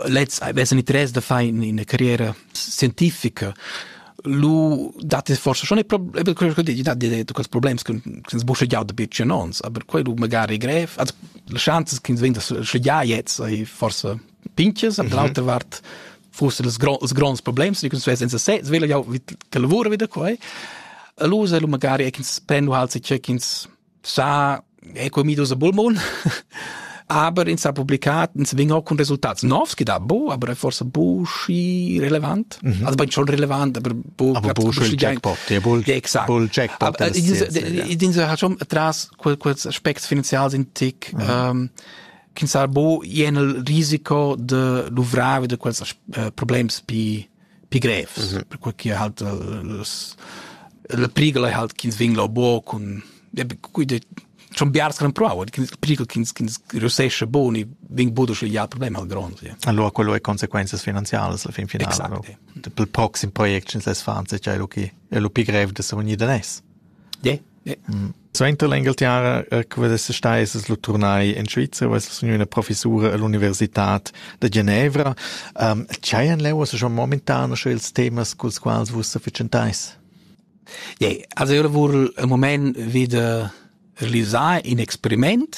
lez avessan i tres da far in, ina carriera scientifica lu dat es forse schon problem quello che dici dat di quels problems che che sbusche giau da bitch in ons aber quello magari grev also le chances che venda sche ja jetzt ei forse pinches aber l'altra vart forse das gros gros problems die kunst in se svela jau wie lavora wieder quai allora lu magari ins prendo halt sich check ins sa è comidos a bulmon aber ins ha publicat ins vin auch con resultats novs da bo aber forse bu schi relevant mhm. also bin schon relevant aber bu aber bu schi jackpot der bull exakt bull jackpot din ha schon tras kurz aspekt finanzial sind tick mhm. ähm, kin sar bo jenel risiko de luvravi de quels uh, problems pi pi grevs, mm -hmm. perquei che halt las, la prigel ei halt ch'ins vegn lau buca cun schon biars che provau, pericol ch'ins reussesce bun e vegn buca sch'il ja problem hal grond. Ja. Allora quello è conseguenze finanziarie alla fin finale. Exacte. Per proxim project ins les fan se c'è lu chi è lu pi grev da sa unir da nes. Ja, Suenter l'Engalterra che vess stà essas lu turnai en Svizra vess sogn üna professura all'universitad da Genevra. Tgei han leu schon momentan sche ils temas culs quals vus sa fitschenteis? Ja, also io lavur un moment wieder realisar in experiment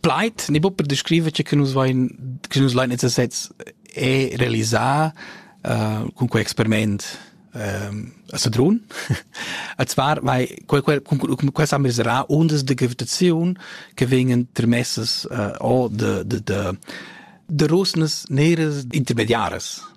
plaid ne bu per descriver che che nus vain che nus lain esser sezs e realisar uh, cun quei experiment um, a Sadrun. a zwar, weil quel, quel, cun quel sam reserà undas de gravitaziun che vengen trimesses uh, o de, de, de, de rusnas neres intermediares.